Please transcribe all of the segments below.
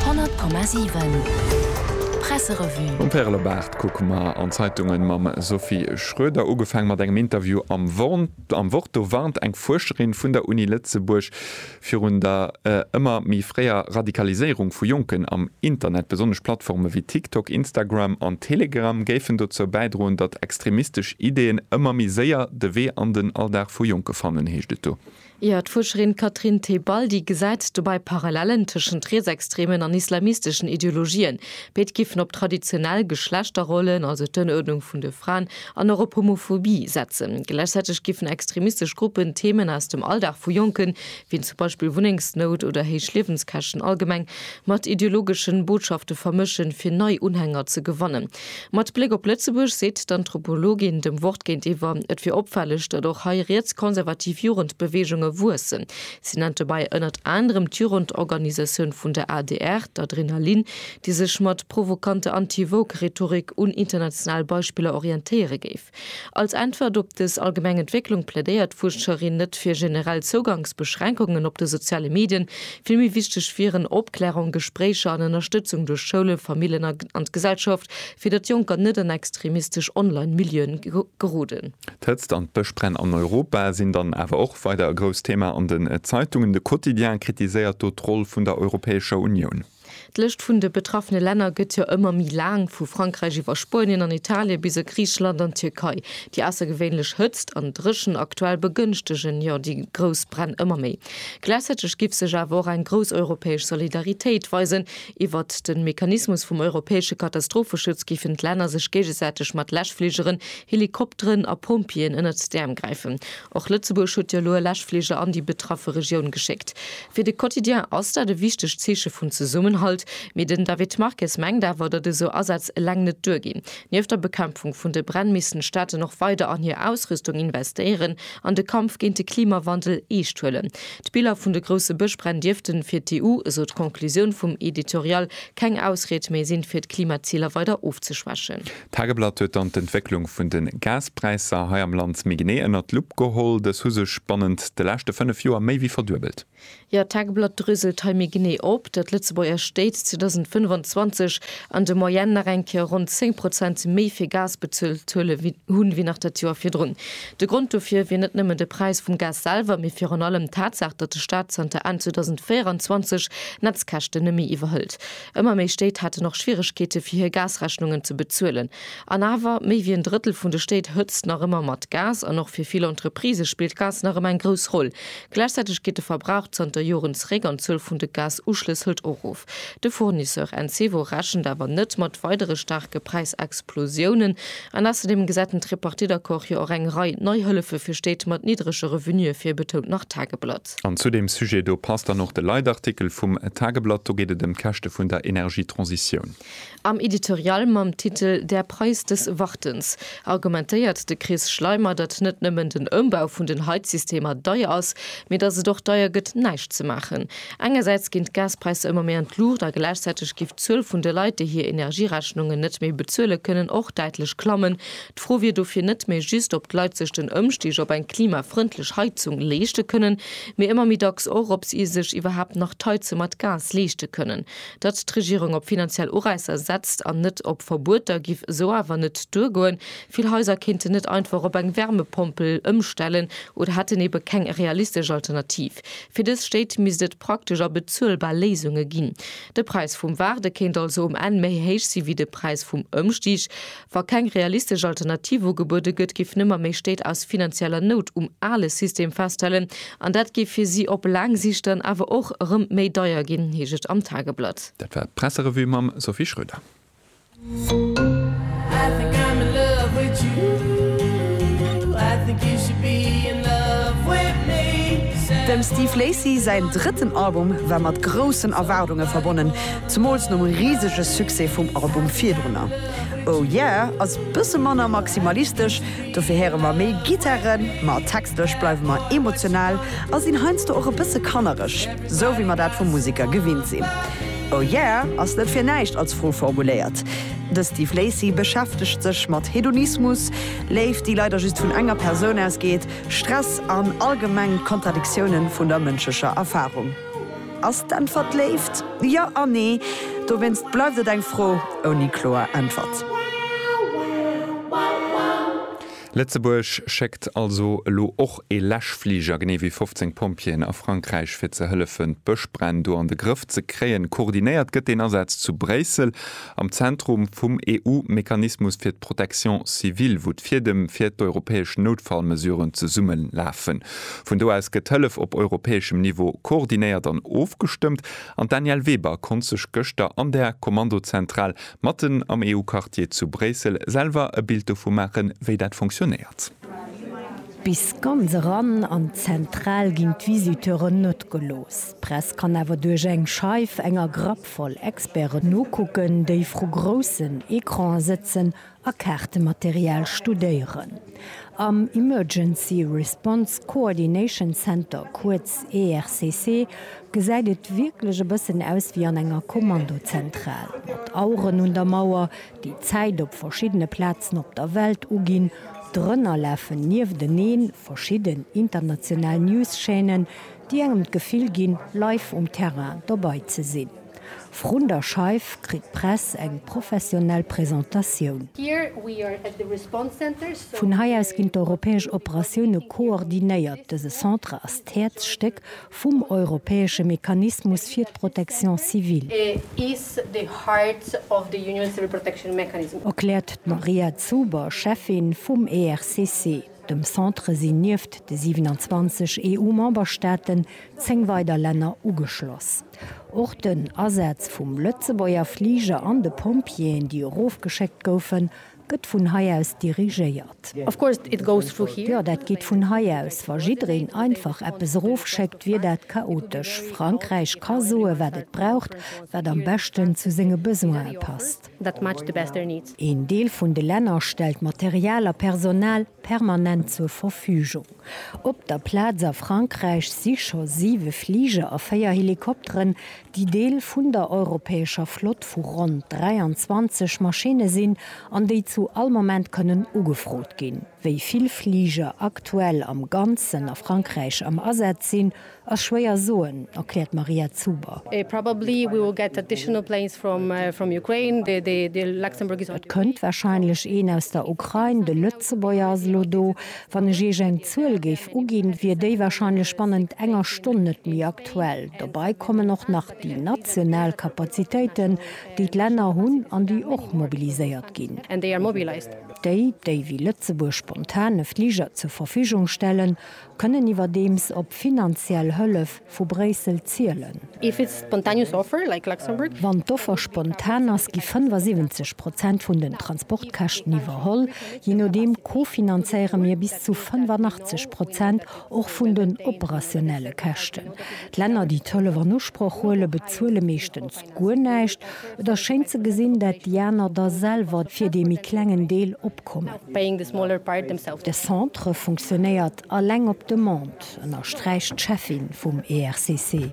100,7 Presserevue. Um Pärelebart kucke mer an d'Zeitungen mam Sophie Schroeder. Ugefaang mat engem Interview am Wort. Am Wort do warnt eng Fuerscherin vun der Uni Lëtzebuerg virun der ëmmer méi fréier Radikaliséierung vu Jonken am Internet. Besonnesch Plattforme wéi TikTok, Instagram an Telegram géifen dozou bäidroen, datt extremistesch Ideeën ëmmer méi séier de Wee an den Alldag vu Jonke fannen, heescht et do. Ier d'Fuerscherin Catherine Tebaldi gesäit dobäi Parallellen tëschent rietsextremen an islamisteschen Ideologien. Béid giffen op traditionell Geschlechterrollen, also d'Ënnuerdnung vun de Fraen, an och op Homophobie setzen. Gläichzäiteg giffen extremistesch Gruppen Theemen aus dem Alldag vu Jonken, wéi zum Beispill Wunnengsnout oder héich Liewenskäschten allgemeng, mat ideologeschen Botschafte vermëschen, fir nei Unhänger ze gewannen. Mat Bléck op Lëtzebuerg seet d'Anthropologin dem Wort géintiwwer, et wier opfälleg, datt och hei rietskonservativ Jugendbeweegunge wuessen. Si nennt dobäi ënnert anerem d'Jugendorganisatioun vun der adr, d'Adrenalin, déi sech mat provokante Anti-Woke-Rhetorik un international Beispiller orientéiere géif. Als Äntwert op dës allgemeng Entwécklung plädéiert d'Fuerscherin net fir generell Zougangsbeschränkungen op de soziale Medien. Vill méi wichteg wieren Opklärung, Gespréicher an Ënnerstëtzung duerch Schoulen, Famillen an d'Gesellschaft, fir datt Jonker net an extremistesch Online-Milieuen geroden. D'Hëtzt an d'Bëschbränn an Europa sinn dann awer och weider e grousst Thema an den Zeitungen. De Quotidien kritiséiert do d'Roll vun der Europäescher Unioun. D'Lëscht vun de betraffene Länner gëtt jo ëmmer méi laang, vu Frankräich iwwer Spuenien an Italien bis a Griicheland an d'Tierkei. Déi aussergewéinlech Hëtzt an Dréchent aktuell begënschtegen jo déi grouss Bränn ëmmer méi. Gläichzäiteg giff sech awer och eng grouss europäesch Solidaritéit weisen. Iwwert de Mechanismus vum europäesche Katastropheschutz giffen d'Länner sech géigesäiteg mat Läschfligeren, Helikopteren a Pompjeeën ënnert d'Äerm gräifen. Och Lëtzebuerg huet jo elo e Läschfliger an déi betraffe Regioun geschéckt. Fir de Quotidien ass dat e wichtegt Zeeche vun Zesummenhalt. Mee den David Marques mengt awer, datt esou Asätz eleng net duerginn. Nieft der Bekämpfung vun de Bränn missten d'Staaten och weider an hir Ausrüstung investéieren an de Kampf géint de Klimawandel eescht huelen. D'Biller vun de grousse Bëschbränn dierfte fir d'EU, esou d'Conclusioun vum Editorial, keng Ausried méi sinn, fir d'Klimaziler weider ofzeschwächen. D'Tageblatt huet dann d'Entwécklung vun de Gaspräisser hei am Land méi genee ënnert d'Lupp geholl. Dës hu sech bannent de leschte fënnef Joer méi wéi verduebelt. Jo, d'Tageblatt drëselt hei méi genee op, datt d'Lëtzebuerger Stéit 2025 an de Moyenne nach eng Kéier ronn 10 Prozent méi fir Gas bezuelt hu wéi nach dat Joer virdrun. De Grond dofir wier net nëmmen de Präis vum Gas selwer, mee virun allem d'Tatsaach, datt de Staat zanter Enn 2024 d'Netzkäschten net méi iwwerhëlt. Ëmmer méi Stéit haten och Schwieregkeete fir hir Gasrechnungen ze bezuelen. An awer, méi wéi en Drëttel vun de Stéit hëtzt nach ëmmer mat Gas an och fir vill Entreprisë spillt d'Gas nach ëmmer eng grouss Roll. Gläichzäiteg geet de Verbrauch zanter Joren zeréck an d'Zuel vun de Gas-Uschlëss hëlt och of. De Fournisseur Encevo rechent awer net mat weidere staarke Präisexplosiounen. An ausserdeem gesäit den Tripartite-Accord jo och eng Rei nei Hëllefe fir Stéit mat niddrege Revenuë vir, betount nach d'Tageblatt. Stad. An zu deem Sujet do passt dann och de Leitartikel vum Tageblatt. Do geet et ëm d'Käschte vun der Energietransitioun. Am Editorial mam Titel Der Preis des Wartens argumentéiert de Chris Schleimer, datt net nëmmen den Ëmbau vun den Heizsystemer deier ass, mee datt et och deier gëtt, näischt ze maachen. Engersäits ginn d'Gaspräisser ëmmer méi an d'Luucht a gläichzäiteg géif d'Zuel vun de Leit, déi hir Energierechnungen net méi bezuelen kënnen, och däitlech klammen. D'Fro wier dofir net méi just, ob d'Leit sech den Ëmstig op eng klimafrëndlech Heizung leeschte kënnen, mee ëmmer méi dacks och, ob si sech iwwerhaapt nach d'Heize mat Gas leeschte kënnen. Datt d'Regierung op finanziell Uräisser setzt an net op Verbueter, giff esou awer net duergoen. Vill Haiser kéinten net einfach op eng Wärmepompel ëmstellen oder hätten ebe keng realistesch Alternativ. Fir dës Stéit misst et praktesch a bezuelbar Léisunge ginn. De Präis vum Waarde kéint also um Enn méi héich si wéi de Präis vum Ëmstig. Wa keng realistesch Alternativ ugebuede gëtt, géifen ëmmer méi Stéit aus finanzieller Nout um ale System festhalen an dat géif fir si op laang Sicht dann awer och erëm méi deier ginn, heescht et am Tageblatt. Dat war d'Presserevue mam Sophie Schröder. Dem Steve Lacy säin drëtten Album war mat groussen Erwaardunge verbonnen, zemools nom risege Succès vum Album virdrunner. Oh yeah ass bësse manner maximalistesch, dofir héiere mer méi Gittare, ma textlech bleiwe mer emotional a sinn heiansdo och e bësse kannereg, sou wéi mer dat vu Museker gewinnt sinn. Oh yeah ass net fir näischt als Fro formuléiert. De Steve Lacy beschäftegt sech mat Hedonismus, Léift déi leider just vun enger Persoun ausgeet, Stress an allgemeng d'Kontradiktiounen vun der mënschlecher Erfarung. Ass d'Äntwert Léift? Jo a nee. Dowéinst bleift et eng Fro ouni kloer Äntwert. Lëtzebuerg schéckt also elo och ee Läschfliger, genee wéi 15 Pompjeeën, a Frankräich, fir ze hëllefen, d'Bëschbränn do an de Grëff ze kréien. Koordinéiert gëtt deen Asaz zu Bréissel. Am Zentrum vum EU-Mechanismus fir d'Protection civile, wou d'Fiedem fir d'europäesch Noutfallmesuren zesummelafen. Vun do aus gëtt d'Hëllef op europäeschem Niveau koordinéiert an ofgestëmmt. An d'Danièle Weber konnt sech gëschter an der Kommandozentral, matten am EU-Quartier zu Bréissel, selwer e Bild dovu maachen, wéi dat funktionéiert. Bis ganz eran an d'Zentral ginn d'Visiteuren net gelooss. D'Press kann awer duerch eng Scheif, enger Grapp, wäertvoll Experten ukucken, déi vru groussen Ecrane sëtzen a Kaartematerial studéieren. Am Emergency Response Coordination Center, kuerz ERCC, gesäit et wierklech e bëssen aus wéi an enger Kommandozentral, mat Aueren un der Mauer, déi d'Zäit op verschiddene Plazen op der Welt uginn. Drënner lafen niefteneen verschidden international News-Chaînen, déi engem d'Gefill ginn, live um Terrain dobei ze sinn. Vrun der Scheif kritt d'Press eng professionell Presentatioun. Vun hei aus ginn d'europäesch Operatioune koordinéiert. Dëse Centre ass d'Häerzstéck vum europäesche Mechanismus fir d'Protection civile, erkläert d'Maria Zuber, Cheffin vum ERCC. Dem Centre sinn nieft de 27 EU-Memberstaaten 10 weider Länner ugeschloss. Och den Asaz vum Lëtzebuerger Fliger an de Pompjeeën, déi erofgeschéckt goufen, gëtt vun hei aus dirigéiert. Jo, dat geet vun hei aus. Wa jiddereen einfach eppes erofschéckt, wier dat chaotesch. Frankräich ka soen, wat et braucht, wat am beschten zu senge Besoine passt. that match the best their needs. Een Deel vun de Länner stellt Material a Personal permanent zur Verfügung. Op der Plaz a Frankräich si scho siwe Fliger a véier Helikopteren, déi Deel vun der europäescher Flott vu ronn 23 Maschinne sinn an déi zu all Moment kënnen ugefrot ginn. Wéi vill Fliger aktuell am Ganzen a Frankräich am Asaz sinn, ass schwéier soen, erkläert d'Maria Zuber. Et kënnt warscheinlech een aus der Ukrain, de Lëtzebuerger ass elo do. Wann ech Iech eng Zuel géif uginn, wier déi warscheinlech bannent enger Stonn net méi aktuell. Dobei kommen och nach déi national Kapazitéiten, déi d'Länner hunn an déi och mobiliséiert ginn. Déi, déi wéi Lëtzebuerg spontan e Fliger zur Verfügung stellen, kënnen iwwerdeems op finanziell Hëllef vu Bréissel zielen. Wann d'Offer spontan ass, gi 75 Prozent vun den Transportkäschten iwwerholl. Je nodeem co-finanzéiere mir bis zu 85 Prozent och vun den operationelle Käschten. D'Länner, déi d'Hëllef an Usproch huelen, bezuele meeschtens Guer näischt. Et ass schéin ze gesinn, dat déi aner da selwer fir dee méi klengen Deel opkommen. De Centre funktionéiert alleng op Demande, ënnersträicht d'Cheffin vum ERCC.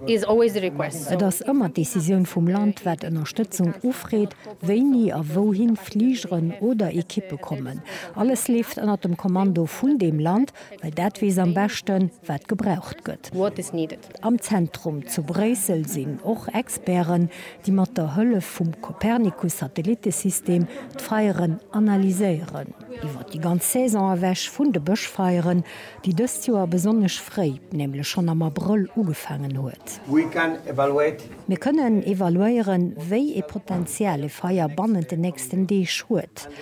Et ass ëmmer d'Decisioun vum Land, wat Ënnerstëtzung ufreet, wéini a wouhin Fligeren oder Ekippe kommen. Alles leeft ënnert dem Kommando vun deem Land. well dat weess am beschten, wat gebraucht gëtt. Am Zentrum zu Bréissel sinn och Experten, déi mat der Hëllef vum Copernicus-Satellitesystem d'Feieren analyséieren. Iwwer déi ganz Saison ewech vun de Bëschfeieren, déi dëst Joer besonnesch fréi, nämlech schonn am Abrëll ugefaangen huet. Mir kënnen evaluéieren, wéi ee Potenzial e Feier bannent den nächsten Deeg huet.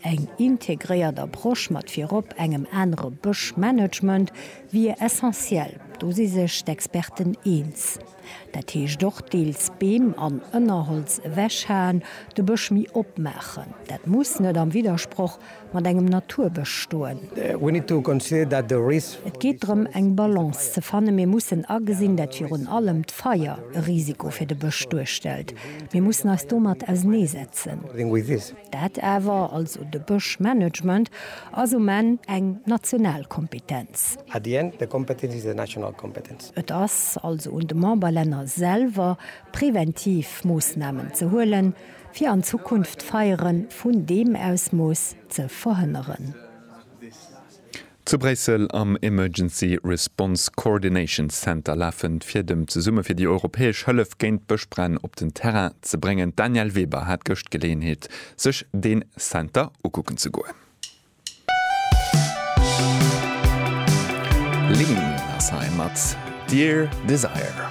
Eng integréiert Approche mat virop engem anere Bëschmanagement wier essentiell, do si sech d'Experten eens. Dat heescht och deels Beem an Ënnerholz ewechhaen, de Bësch méi opmaachen. Dat muss net am Widdersproch mat engem Naturbësch stoen. Et geet drëm eng Balance ze fannen. Mir mussen agesinn, dat virun allem d'Feier e Risiko fir de Bësch duerstellt. Mir mussen eis domat auseneesetzen. Dat awer, also de Bëschmanagement, ass um Enn eng national Kompetenz. At the end, the competence is a national competence. Et ass also un de Memberlänner selwer, präventiv Moossnamen ze huelen, fir an Zukunft Feiere vun deem Ausmooss ze verhënneren. Zu Bréissel am Emergency Response Coordination Center lafen d'Fiedem zesumme fir déi europäesch Hëllef géint d'Bëschbränn op den Terrain ze bréngen. D'Danièle Weber hat gëscht Geleeënheet sech den Center ukucken ze goen. Lean ass hei mat Dear Desire.